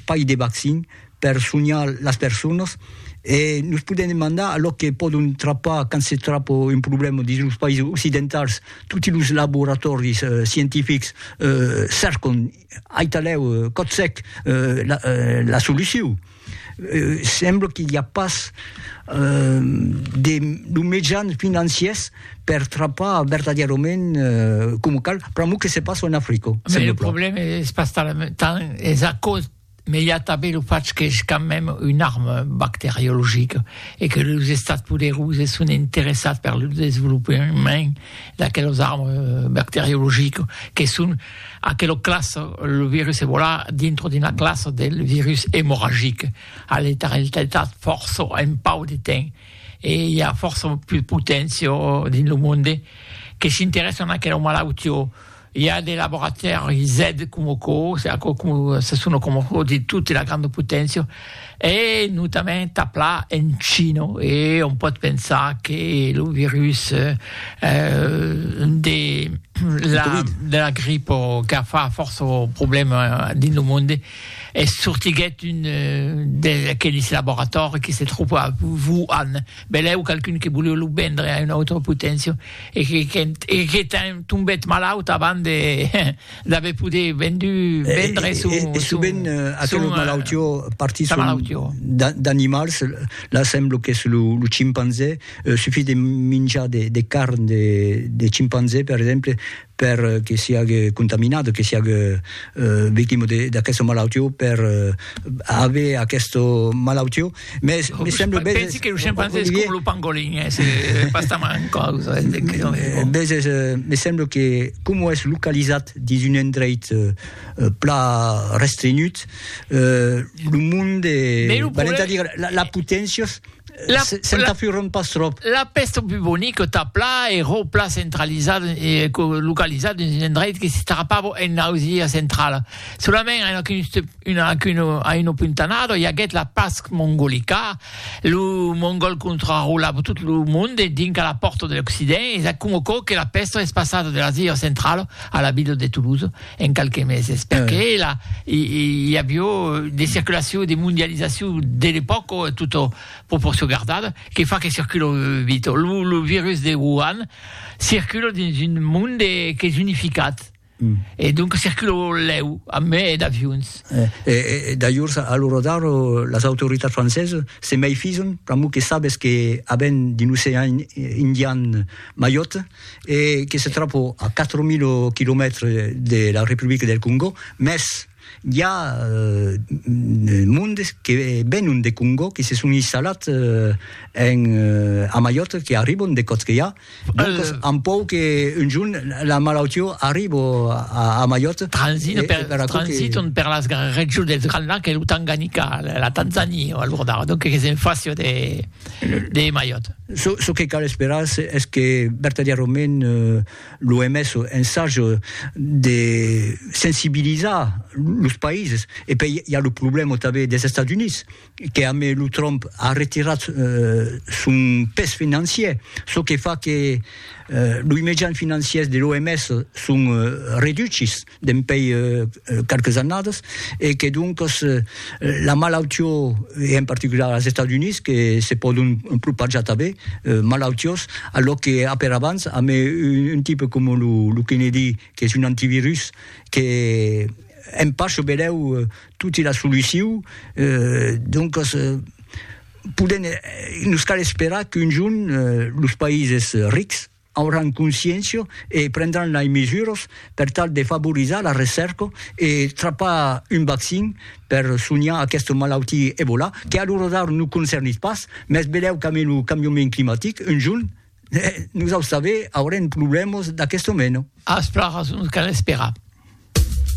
Pas de vaccin per sonhar las personas e nos podèm demandar a lo que pòdon trapar quand se trapa un problèma dins los païses occidentals, toti los laboratòris scientifics cèrcan aitalèu còth sec la solucion. Sembla que i a pas de los mejans financiers per trapar vertadièrament coma cal, pr'amor que se passa en Africa. Mais le problème es pas tant, es a cause mais i a tanben lo fach qu'es quand même una arma bacteriologica e que los estats poderosi son interessats per lo desvolopament d'aquelas armas bacteriologicas que son aquela classa, lo virus Ebola, dintre d'una classa del virus emorragic a letaltat fòrça un pauc de temps. e i a fòrça pus poténcia dins lo monde que s'interèssan a aquela malautiá, i a de laboratèris aide coma aquò, aquò se sona coma aquò dins tota la granda poténcia, e notament aplà en China, e òm pòt pensar que lo virus de la gripa qu'a fach fòrça problèmas dins lo monde. e sortiguèt un d'aqueles laboratòris que se tropa a Wuhan, belèu qualqu'un que voleu lo vendre a una autra poténcia e que qu'ènt e que qu'ènt tombèt malaut avant de d'aver poder vendu vendre son son e sovent aquela malautiá partís d'animals, la sembla qu'es lo chimpanzé, sufís de minjar de carn de chimpanzé per exemple, per que siague contaminat, que siague victima d'aquesta malautió, per aver aquesta malautió, mès me semble beses... Pensi que lo scimpanzé es coma lo pangolin, es pas tan gran causa. Beses, me semble que coma es localizat dins un endreit plan restrenhut, lo monde, valent a dire, las poténcias, Se'n tafuron pas tròp. La pèsta bubonica tà pla e ro pla centralizada e localizada dins un endreit que s'estrapava en Ausia centrala. Solament a una puntanada i aguèt la Pasc mongolica, lo mongòl contrarolava tot lo monde dinc a la pòrta de l'Occident e s'acumocò que la pèsta es passada de l'Asia centrala a la vila de Toulouse. en qualques meses, perque eh. la, i, i avió de circulacion, de mondializacion de l'epòca, tota proporcion gardada, que fa que circula vita. Lo, lo virus de Wuhan circula dins un monde qu'es unificat, Mm. E donc circula lèu, a me e d'avions. Eh, e, e, d'ajors, a lo rodar, las autoritats francesas se meifison, pr'amor que sabes que aben d'un ocean indian maiot, e que se tròba a 4.000 quilomètres de la Republica del Congò, mès i a mondes que venon de Congò, que se son instalats en a Maiòrca, que arribon de Còtqueja, doncas an pòur que un jorn la malautiá arriba a Maiòrca. Transitan per, transitan per las regions dels Grands Lacs e lo Tanganica, la Tanzania, alordar, donc que se'n fàcia de de Maiòt. Çò que cal esperar es que vertadièrament l'OMS ensage de sensibilizar los païses. E pèi i a lo problèma tanben des Estats Units, que a mai lo Trump a retirat son pes financier, çò que fa que loi mejans financiers de l'OMS son reduchis. dempèi qualques annadas e que doncas la malautió e en particular als Estats Units que se pòdon propajar tanben malautiós a lo que a per abans a me un tipe coma lo Kennedy que es un antivirus que en pas çò belèu toti la soluciu doncas podèm nos cal esperar qu'un jorn los païses rics auràn consciéncia e prendràn lei mesuras per tal de favorizar la recèrca e trapar un vaccin per sonhar aquesta malautia Ebola, que a l'ora d'ara nos concernís pas, mès velèu qu'amé lo cambiament climatic, un jorn, nosaus tanben aurem problèmas d'aquesta mena. As plan rason, cal esperar.